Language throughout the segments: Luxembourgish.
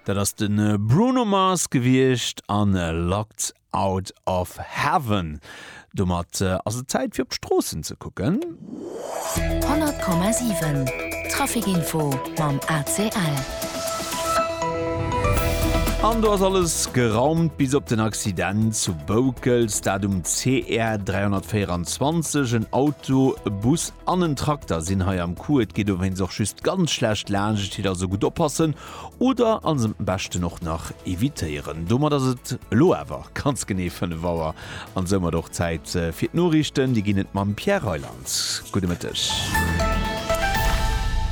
Dat ass den Bruno Mars gewiecht an Locked Out of Heaven. Domat ass et Zäit fir op d'Stroossen ze kucken. 100,7 Traficinfo mam ACL. An do ass alles geraumt bis op den Accident zu Boukels, dat um CR 324. En Auto, Bus an en Trakter sinn hei am Coup, et geet dowéinst och just ganz schlecht laanscht hiert, also gutt oppassen oder alles am beschten och nach evitéieren. Domat ass et elo awer ganz genee 5 Auer an soumat och Zäit fir d'Noriichten. Déi ginn et mam Pierre Reyland. Gudde Mëtteg.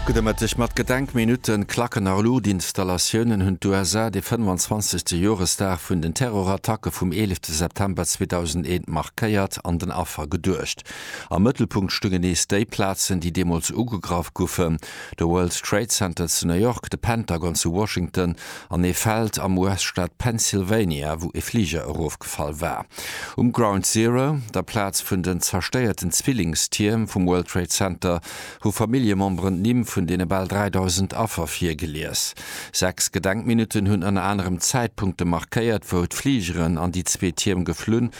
Gudde Mëtteg. Mat Gedenkminutte klacken a Luuchtinstallatiounen hunn d'USA de 25. Joresdag vun den Terrorattacke vum 11 September 2001 markéiert an den Affer geduecht. Am Mëttelpunkt stungen nees déi Plazen, déi deemools ugegraff guffen, de World Trade Center zu New York, de Pentagon zu Washington an ee Feld am US-Staat Pennsylvania, wou ee Fliger erofgefall war. Um Ground Zero, der Plaz vun den zerstéierten Zwillingstierm vum World Trade Center, hu Familljememberen d'Nimm vun deene bal 3.000 Affer virgelies. Sechs Gedenkminutten hunn ënner anerem d'Zäitpunkte markéiert, wou d'Fligeren an déi zwee Tierm geflunn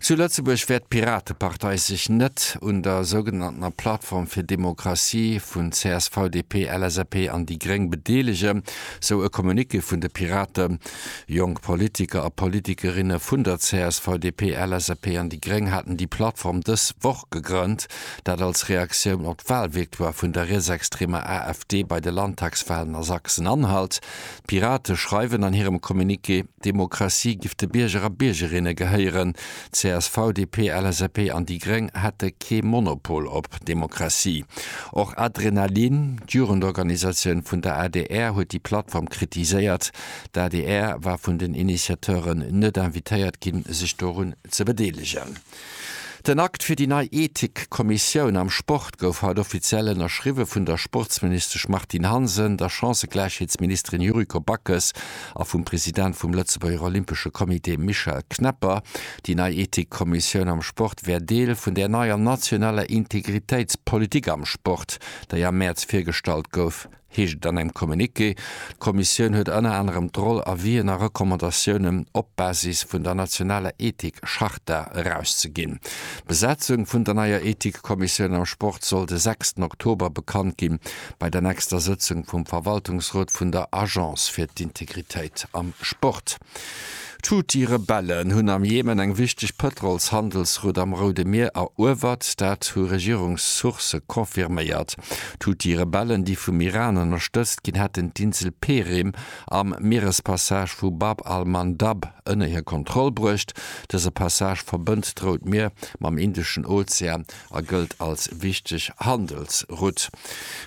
Zu Lëtzebuerg wäert d'Piratepartei sech net un der sougenanntener Plattform fir Demokratie vun csv, DP, LSAP an déi Gréng bedeelegen, sou e Communiqué vun de Piraten. Jonk Politiker a Politikerinne vun der csv, DP, LSAP an déi Gréng haten déi Plattform dës Woch gegrënnt, dat als Reaktioun op d'Wahlvictoire vun der rietsextremer AfD bei de Landtagswahlen a Sachsen-Anhalt. D'Pirate schreiwen an hirem Communiqué. Demokratie giff de Bierger a Biergerinne gehéieren. Csv, DP, LSAP an déi Gréng hätte kee Monopol op Demokratie. Och Adrenalin, d'Jugendorganisatioun vun der adr, huet déi Plattform kritiséiert. D'adr war vun den Initiateuren net invitéiert ginn, sech dorun ze bedeelegen. Den Akt fir déi nei Ethikkommissioun am Sport gouf haut offiziell ënnerschriwwe vun der Sportsministesch Martine Hansen, der Chancëgläichheetsministerin Yuriko Backes a vum President vum Lëtzebuerger Olympesche Comité Michel Knepper. Déi nei Ethikkommissioun am Sport wär Deel vun där neier nationaler Integritéitspolitik am Sport, déi am Mäerz virgestallt gouf. heescht et an engem Communiqué. D'Kommissioun huet ënner anerem d'Roll, Avisen a Recommandatiounen op Basis vun der nationaler Ethik-Charta erauszeginn. D'Besetzung vun der neier Ethikkommissioun am Sport soll de sechsten Oktober bekannt gi bei der nächster Sëtzung vum Verwaltungsrot vun der Agence fir d'Integritéit am Sport. D'Houthi-Rebellen hunn am Jemen eng wichteg Pëtrolshandelsroute am Roude Mier eruewert, dat hu Regierungssourcë confirméiert. D'Houthi-Rebellen, déi vum Iran ënnerstëtzt ginn, hätten d'Insel Perim am Mierespassage vu Bab al-Mandab ënner hir Kontroll bruecht. Dëse Passage verbënnt d'Rout Mier mam Indeschen Ozean. a gëllt als wichteg Handelsrutt.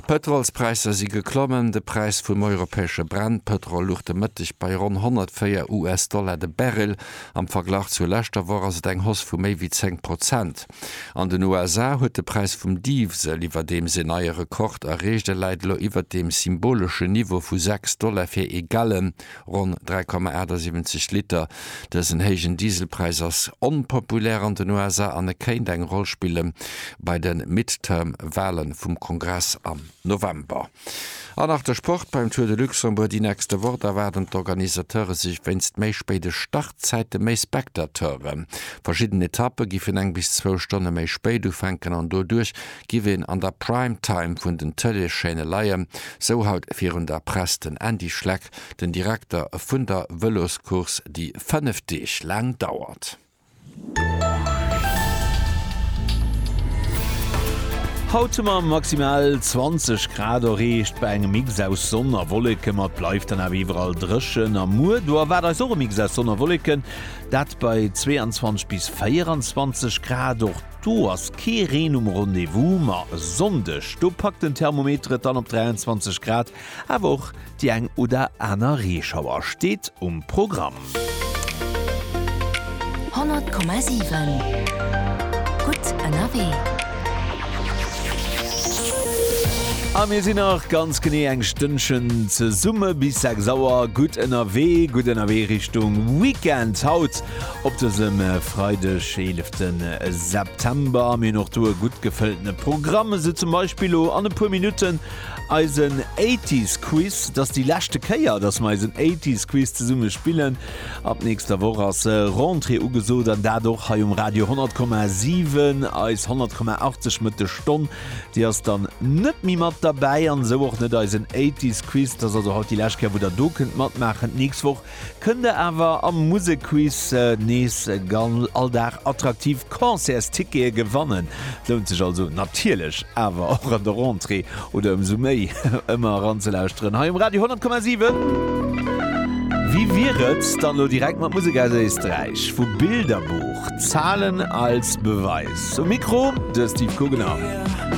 D'Pëtrolspräisser si geklommen. De Präis vum europäesche Brennpëtrol luch de Mëtteg bei ronn 104 US-Dollar de Barrel. Am Verglach zur leschter Woch ass et eng Hausse vu méi wéi 10 Prozent. An den USA huet de Präis vum Diwsel iwwerdeems een neie Rekord erreecht, e läit elo iwwert dem symboleschen Niveau vu 6 Dollar fir ee Gallon. Ronn 3,78 Liter. Dësen héijen Dieselpräis ass onpopulär an den USA an e kéint eng Roll spille bei de Midterm-Wale vum Kongress am November. An nach de Sport, Beim Tour de Luxembourg déi nächste Woch, da waarden d'Organisateure sech wéinst méi spéide Startzäite méi Spectateuren. Verschidden Etappe giffen eng bis zwou Stonne méi spéit ufänken an doduerch giff een an der Prime Time vun den Tëleeschaîne leien, sou haut virun der Press den Andy Schleck, den Direkter vun der Vëloscourse, déi 5 Deeg laang dauert. Haut hu mer maximal 20 Grad erreecht, bei engem Mix aus Sonn a Wolleke, ma et bleift dann awer iwwerall dréchen a muer do erwaart eis och e Mix aus Sonn a Wolleken, dat bei 22 bis 24 Grad. Och. Do ass kee Reen um Rendez-vous, ma e Sonndeg, do packt den Thermometer et dann op 23 Grad. Awer och déi eng oder aner Reeschauer steet um Programm. 100,7 Gutt ënnerwee. A mir sinn nach ganz genee eng Stënnchen zesumme bis 6 Auer gutt ënnerwee. Gutt ënnerwee Richtung Weekend. Haut Op dësem Freideg 11 September am een och do e gutt gefëlltene Programm, esou zum Beispill lo an e puer Minutten eisen Eighties Quiz. Et ass déi leschte Kéier, dass mer eisen Eighties Quiz zesumme spillen. Ab nächster Woch ass Rentrée ugesot an dat och hei um Radio 100,7. Eis 100,80 Mëtt de Stonn, déi ass dann net méi mat derbäi an esou och net eisen Eighties Quiz. Et ass also haut déi lescht Kéier, wou der do kënnt matmaachen. D'nächst Woch Kënnt der awer am Musekquiz nees gan all Dag attraktiv Concertstickete gewannen. Lount sech also natierlech awer och an der Rentrée oder ëmsou méi ëmmer eranzelauschteren hei um Radio 10,7. Wéi wier et dann elo direkt mat Musek aus Éisträich, vu Bilderbuch, Zahlen als Beweis. Um Mikro de Steve Guggenau.